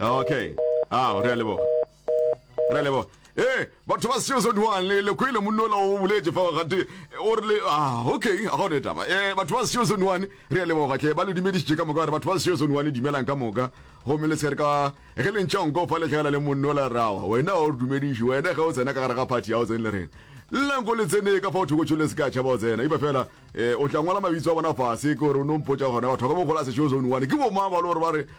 Okay. Ah, re a leboga. Re a leboga. Eh, batho ba seo se duang le le kwele monola o boletse fa ga te o re le ah, okay, a gone taba. Eh, batho ba seo se duang re a leboga tle ba le dumedisitse ka moka re batho ba seo se duang dumelang ka moka. Go me le se re ka ge le ntšang go fa le tlhela le monola rawa. Wena o re dumediše, wena ge o tsena ka gare ga party ya o tsene le rena. Llang go le tsene ka fa o thoko tšhole se ka tšhaba o tsena. Ipa fela eh o tla ngwala mabitso a bona fase ke gore o no mpotsa gona batho ba ka mo gola se seo se duang. Ke bo ma ba lo re ba re